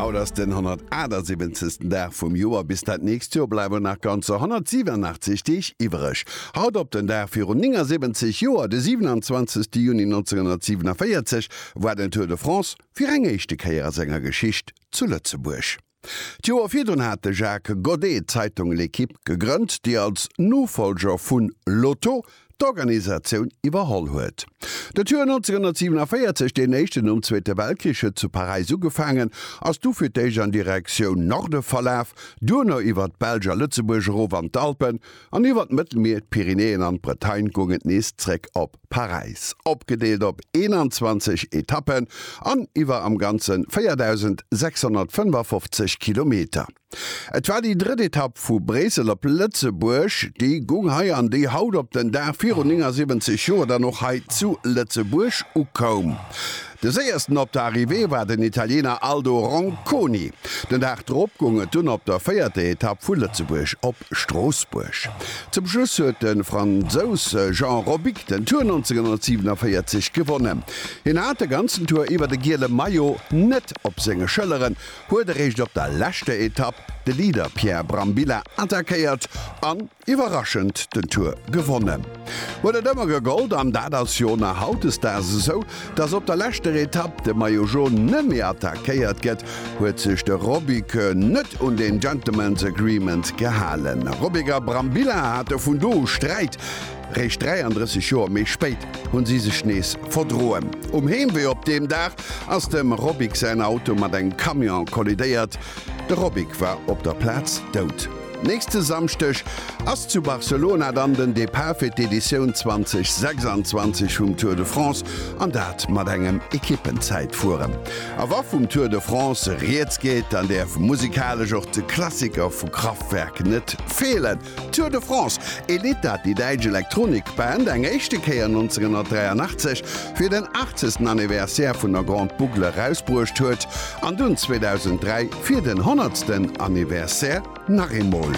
Haut ass den 178. Dag vum Joer. Bis dat nächst Joer bleiwen nach ganzer 187 Deeg iwwereg. Haut op den Dag virun 79 Joer, de 27. Juni 1947, war den Tour de France fir eng éischte Kéier a senger Geschicht zu Lëtzebuerg. D'Joer virdrun hat de Jacques Godet d'Zeitung L'Équipe gegrënnt, déi als Nofollger vu L'Auto d'Organisatioun iwwerholl huet. Dat Joer 1947, deen éischten nom Zweete Weltkrich, huet zu Paräis ugefaangen, ass du fir d'éischt an Direktioun Norde verlaf, duerno iwwer d'Belsch a Lëtzebuerg erof an d'Alpen an iwwer d'Mëttelmier, d'Pyrenäen an d'Bretagne goung et nees zréck op. Paräis, opgedeelt op 21 Etappen an iwwer am Ganze 4.655 Kilometer. Et war déi drëtt Etapp vu Bréissel op Lëtzebuerg. Déi gung hei an déi haut op den Dag virun 79 Joer dann och hei zu Lëtzebuerg ukoum. De séiersten op der Arrivée war den Italiener Aldo Ronconi. Den Dag drop goung et dunn op der véierter Etapp vu Lëtzebuerg op Stroossbuerg. Zum Schluss huet de Fransous Jean Robic den Tour 1947 gewonnen. Hien hat de ganzen Tour iwwer de giele Maillot net op senge Schëlleren, huet eréischt op der leschter Etapp de Leader Pierre Brambilla attackéiert an Iwwerraschend den Tour gewonnen huet et ëmmer gegollt an dat ass jo nach hautdesdaags esou, dass op der leschter Etapp de Maillot Jaune nëmme attackéiert gëtt, huet sech de Robiker net un den Gentlemen's Agreement gehalen. Robiker a Brambilla hate vun do u Sträit, réischt 33 Joer méi spéit hu si sech nees verdroen. Um Heemwee op deem Dag ass dem Robic säin Auto mat engem Camion kollidéiert, de Robic war op der Plaz dout. Nächste Samschdeg ass zu Barcelona dann den Depart fir d'Editioun 2026 vum Tour de France an dat mat engem Ekippenzäitfueren. A wa vum Tour de France rieds geet, dann däerf musikalesch och de Klassiker vu Kraftwerk net feelen, Tour de France, Elita, déi däitsch Elektronikband, eng éischte Kéier 1983 fir den 80. Anniversaire vun der Grande Boucle erausbruecht huet. An dunn 2003 fir den honnertsten Anniversaire nach eemol.